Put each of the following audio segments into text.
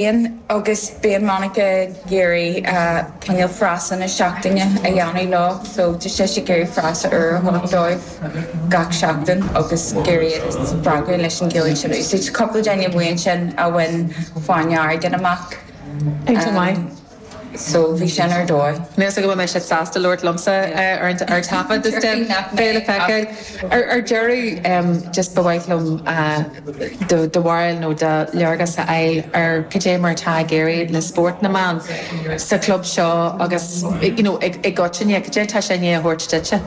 Bíonn agus bíonn Monica ag iarraidh cineál frasa na seachtaine a dhéanamh leo so tá sise ag iarraidh frasa úr a thabhairt dóibh gach seachtain agus ag iarraidh iad a spreagadh leis an Ghaeilge ansin a úsáid. Tá cúpla duine amuigh ansin a bhain Fáinne Airgid amach. so bhí sin ar dóigh. Meas tú go mbeidh siad sásta labhairt liomsa ar taifead is den Gael a feiceáil? Ar deireadh, just ba mhaith liom do bharúil nó do léargas a fháil ar cad é mar atá ag éirí le spórt na mban sa chlub seo agus you know i gcoitinne, cad é atá sé i ndiaidh a thabhairt duitse?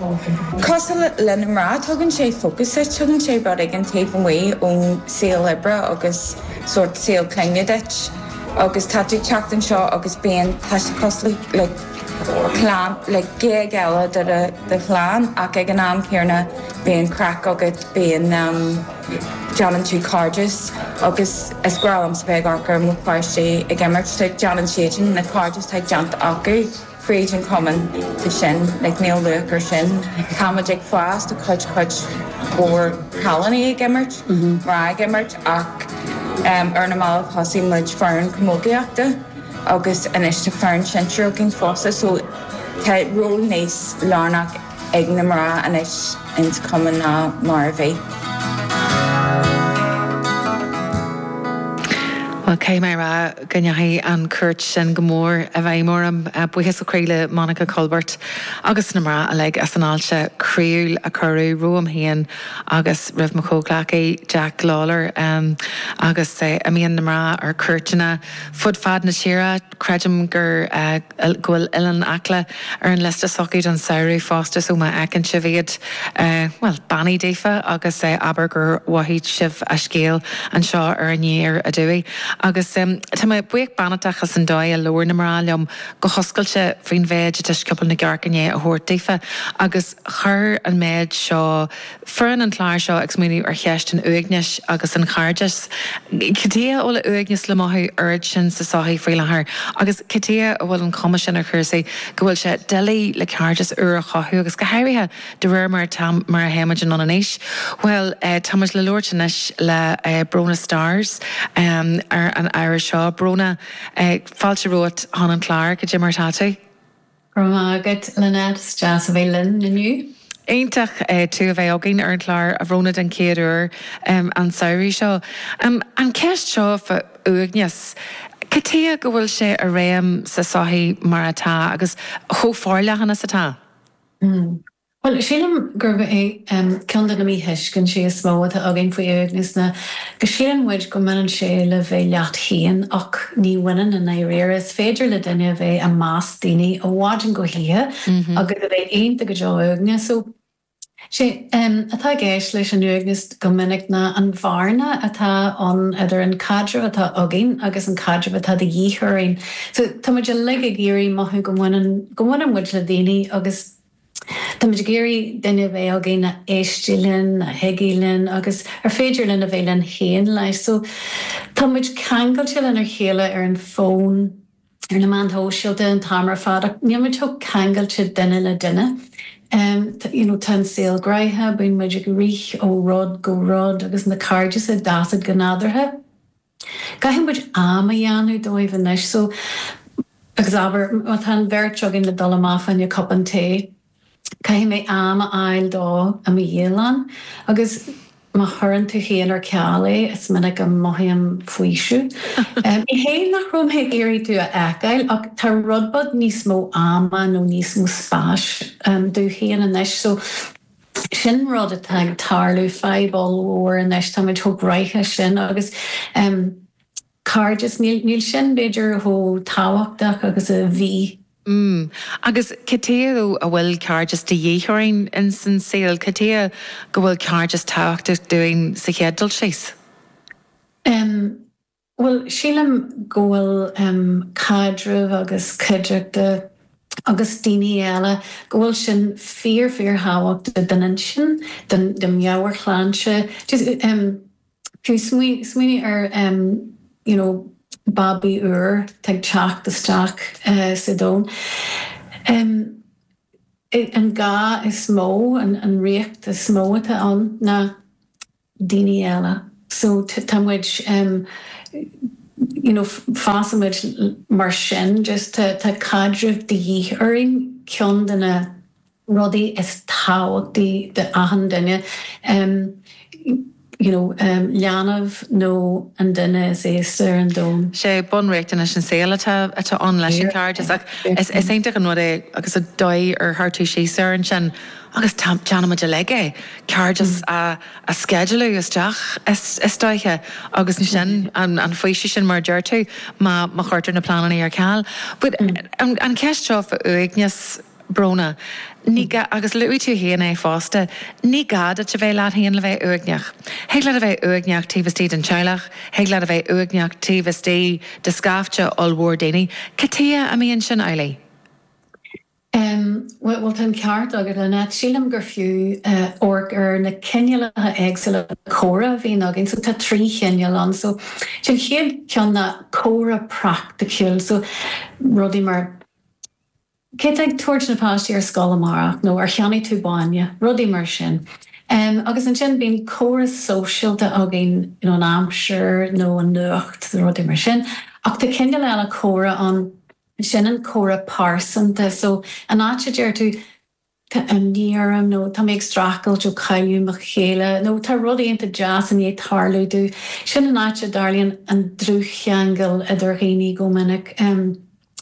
Cosúil le na mná, tugann sé fócas duit, tugann sé rud éigin taobh amuigh ón saol oibre agus sórt saol clainne duit. agus tá tú ag teacht anseo agus bíonn tá sé cosúil le clann le géag eile de do do chlann ach ag an am céanna bíonn craic agat bíonn em déanann tú cairdeas agus is breá liomsa bheith ag amharc ar mo pháistí ag imirt tá ag déanann siad na cairdeas atá déanta acu. Tríd an cumann de sin, like níl luach ar sin. Tá muid ag fás, tá cuid, cuid mhór cailíní ag imirt, mná ag imirt ach em ar na mallaibh thosaigh muid foireann camógaíochta agus anois tá foireann sinsir againn fosta so tá ról níos lárnach ag na mná anois ins an chumann ná mar a bhí. Bhuel, caithfidh mé a rá go ndeachaigh an chuairt sin go mór i bhfeidhm orm. Buíochas ó chroí le Monica Culbert agus na mná uilig as an fháilte croíúil a cuireadh romham féin agus roimh mo chomhghleacaí, Jack Lawlor. Agus em bíonn na mná ar cuairteanna fud fad na tíre, Creidim gur, go bhfuil Oileán Acla ar an liosta s'acu don samhradh fosta so má fheiceann sibh iad, bhuel, beannaigh daofa agus abair gur mhothaigh sibh a scéal anseo ar Aniar Aduaidh. Agus tá mé buíoch beannachtach as an dóigh a labhair na mná liom go hoscailte faoin mhéid atá Scioból na gCearc i ndiaidh a thabhairt daofa agus chuir an méid seo, Foireann an chláir seo ag smaoineamh ar cheist an uaignis agus an chairdis. Cad tuige a bhfuil uaigneas le mothú oiread sin sa sochaí faoi láthair agus cad tuige a bhfuil an chuma sin ar chúrsaí go bhfuil sé doiligh le cairdeas úr a chothú agus go háirithe de réir mar atá mar a théimid anonn in aois? Bhuel, táimid le labhairt anois le Brónagh Starrs ar an ábhar seo. Brónagh, fáilte romhat chun an chláir, cad é mar atá tú? Go raibh maith agat Lynette, is deas a bheith libh inniu. Iontach tú a bheith againn ar an chlár, a Bhrónagh den chéad uair an samhradh seo. An cheist seo fá uaigneas, cad tuige go bhfuil sé i réim sa sochaí mar atá agus chomh forleathan is atá? Bhuel, sílim gurb é ceann de na míthuiscintí is mó atá againn faoin uaigneas ná go síleann muid go mbaineann sé le bheith leat féin ach ní bhaineann i ndáiríre. Is féidir le duine a bheith i measc daoine ó mhaidin go hoíche agus a bheith iontach go deo uaigneach. So, sé atá i gceist leis an uaigneas go minic ná an bhearna atá ann idir an caidreamh atá againn agus an caidreamh atá de dhíth orainn. So, tá muid uilig ag iarraidh mothú go mbaineann muid le daoine agus. Tá muid ag iarraidh duine a bheith againn a éistfidh linn, a thuigfidh sinn agus ar féidir linn a bheith linn féin leis. So tá muid ceangailte lenár chéile ar an fón, ar na meáin shóisialta an t-am ar fad ach níl muid chomh ceangailte duine le duine. You know tá an saol gnaitheach, bíonn muid ag rith ó rud go rud agus na cairdeasa a d'fhás go nádúrtha. Caithfidh muid am a dhéanamh dóibh anois so, agus abair má tá an bheirt againn le dul amach fá choinne cupán tae, caithfidh mé am a fháil dó i mo dhialann agus má chuireann tú é ar ceal é, is minic a mothaím faoiseamh. Ní hé nach raibh mé ag iarraidh tú a fheiceáil ach tá rud beag níos mó ama nó níos mó spáis dom féin anois so, Sin rud atá ag tarlú, fadhb ollmhór anois. Táimid chomh gnaitheach sin agus cairdeas, níl sin b'fhéidir chomh tábhachtach agus a bhí. Mm. Agus cad chuige a bhfuil cairdeas de dhíth orainn in san saol? Cad chuige go bhfuil cairdeas tábhachtach dúinn sa chéad dul síos? Mm. Bhuel, sílim go bhfuil caidreamh agus cuideachta agus daoine eile, go bhfuil sin fíor fíor thábhachtach don intinn, don mheabhairshláinte. Fiú smaoinigh ar you know babaí úr atá ag teacht isteach sa domhan. An gá is mó, an riachtanas is mó atá ann ná. daoine eile. So tá muid em you know fásann muid mar sin just tá caidreamh de dhíth orainn ceann de na rudaí is tábhachtaí d'achan duine em you know em leanbh nó an duine is aosta ar an domhan. sé bunriachtanais an tsaoil atá atá ann leis an chairdeas ach is is iontach an rud é agus an dóigh ar labhair tú síos air ansin. agus déanaimid uilig é, cairdeas a sceidealú isteach is dóiche agus ansin an faoiseamh sin mar a deir tú má chuirtear na pleananna ar ceal. But an cheist seo fá uaigneas, Bróna, ní gá, agus luaigh tú féin é fosta, ní gá duit a bheith leat féin le bheith uaigneach. Thig leat a bheith uaigneach taobh istigh den teaghlach, thig leat a bheith uaigneach taobh istigh de scaifte ollmhór daoine. Cad chuige a mbíonn sin amhlaidh? Bhuel, tá an ceart agat, Lynette. Sílim gur fiú amharc ar na cineálacha éagsúla comhrá a bhíonn againn. So, tá trí chineál ann. So, an chéad cheann ná comhrá praiticiúil. So, rudaí mar, cé atá ag tabhairt na páistí ar scoil amárach nó ar cheannaigh tú bainne? Rudaí mar sin. Agus ansin bíonn comhrá sóisialta againn, you know, an aimsir nó an nuacht, rudaí mar sin. Ach tá cineál eile comhrá ann. Sin an comhrá pearsanta. So, an áit a deir tú, tá imní orm nó tá mé ag streachailt ó cailleadh mo chéile nó tá rud iontach deas i ndiaidh tarlú domh. Sin an áit a dtarlaíonn an dlúthcheangal idir dhaoine go minic.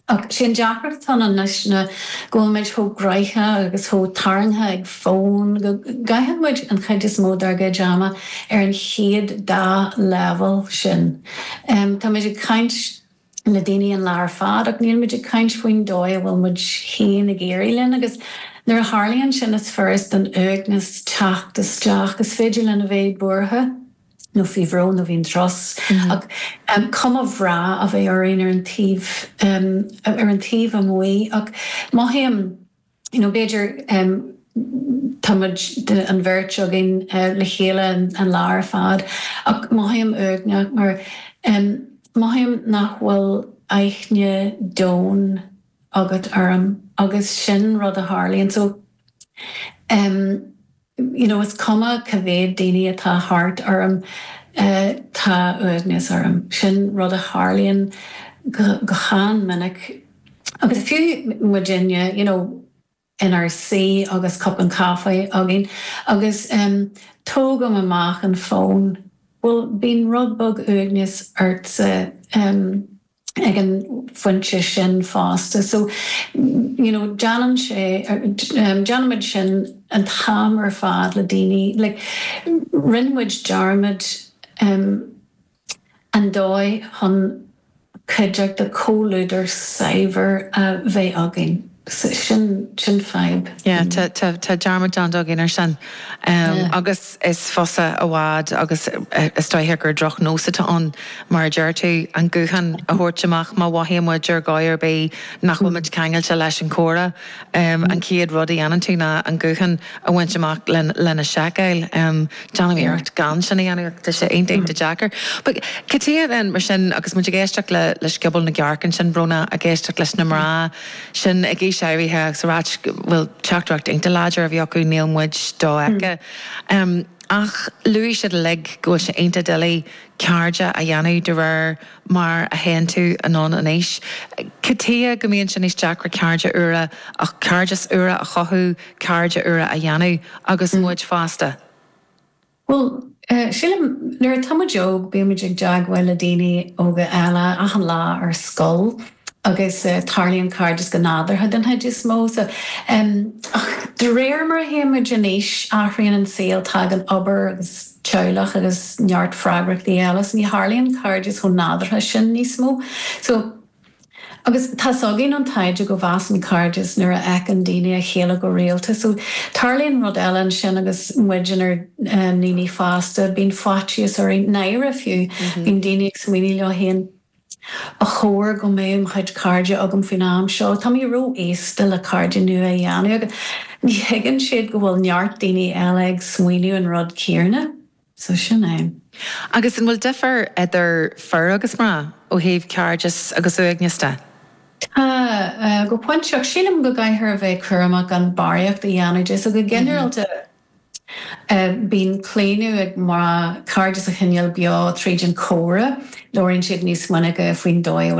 Ach sin an deacracht atá ann anois ná go bhfuil muid chomh gnaitheach agus chomh tarraingthe ag fón go gcaitheann muid an chuid is mó dár gcuid ama ar an chéad dá leibhéal sin. Tá muid ag caint. le daoine an lá ar fad ach níl muid ag caint faoin dóigh a bhfuil muid féin ag éirí leis agus nuair a tharlaíonn sin is furast don uaigneas teacht isteach. Is féidir linn a bheith buartha nó faoi bhrón nó faoi strus ach cuma bhreá a bheith orainn ar an taobh amuigh ach mothaím, you know b'fhéidir tá muid an bheirt againn le chéile an lá ar fad ach mothaím uaigneach mar mothaím nach bhfuil aithne domhain agat orm agus sin rud a tharlaíonn so em. you know is cuma cá mhéad daoine atá thart orm tá uaigneas orm. Sin rud a tharlaíonn go han-mhinic agus fiú muidinne you know inár suí agus cupán caife againn agus em tógaim amach an fón bhuel bíonn rud beag uaigneas ortsa em. ag an bpointe sin fosta. So you know déanann sé em déanaimid sin an t-am ar fad le daoine like rinne muid dearmad em an dóigh chun cuideachta comhluadar saibhir a bheith againn. Sin sin fadhb. Yeah tá tá tá dearmad déanta againn ar sin Yeah. agus is fusa i bhfad agus is dóigh gur drochnós atá ann mar a deir tú an guthán a thabhairt amach má mhothaíonn muid ar dhóigh ar bith nach bhfuil muid ceangailte leis an comhrá an chéad rud a dhéanann tú ná an guthán a bhaint amach lena seiceáil. Déanaim iarracht gan sin a dhéanamh ach tá sé iontach deacair. But cad é mar sin agus muid ag éisteacht le le scioból na gcearc ansin Brónagh ag éisteacht leis na mná sin ag aois áirithe agus a rá go bhfuil teachtaireacht iontach láidir a bhí acu, níl muid dofheicthe. Ach luaigh siad uilig go bhfuil sé iontach doiligh cairde a dhéanamh de réir mar a théann tú anonn in aois. Tchíthear go mbíonn sé níos deacra cairde úra a cairdeas úra a chothú, cairde úra a dhéanamh agus muid fásta. Bhuel, sílim, nuair atá muid óg bíonn muid i dteagmháil le daoine óga eile achan lá ar scoil agus tarlaíonn cairdeas go nádúrtha den chuid is mó. So, em, ach de réir mar a théann muid in aois, athraíonn an saol, tagann obair agus teaghlach agus neart freagrachtaí eile, so ní tharlaíonn cairdeas chomh nádúrtha sin níos mó. So. Agus tá's againn ón taighde go bhfásann cairdeas nuair a fheiceann daoine a chéile go rialta so tarlaíonn rud eile ansin agus muid inár ndaoine fásta, bíonn faitíos orainn náire fiú, bíonn daoine ag smaoineamh leo féin 'Ba chóir go mbeadh mo chuid cairde agam faoin am seo, tá mé ró-aosta le cairde nua a dhéanamh' agus ní thuigeann siad go bhfuil neart daoine eile ag smaoineamh an rud céanna. So sin é. Agus an bhfuil difear idir fir agus mná ó thaobh cairdeas agus uaigneas de? Tá, go pointe ach. Sílim go gcaithfear a bheith cúramach gan barraíocht a dhéanamh de. So go ginearálta bíonn claonadh ag mná cairdeas a choinneáil beo tríd an chomhrá. Labhraíonn siad níos minice faoin dóigh a bhfuil.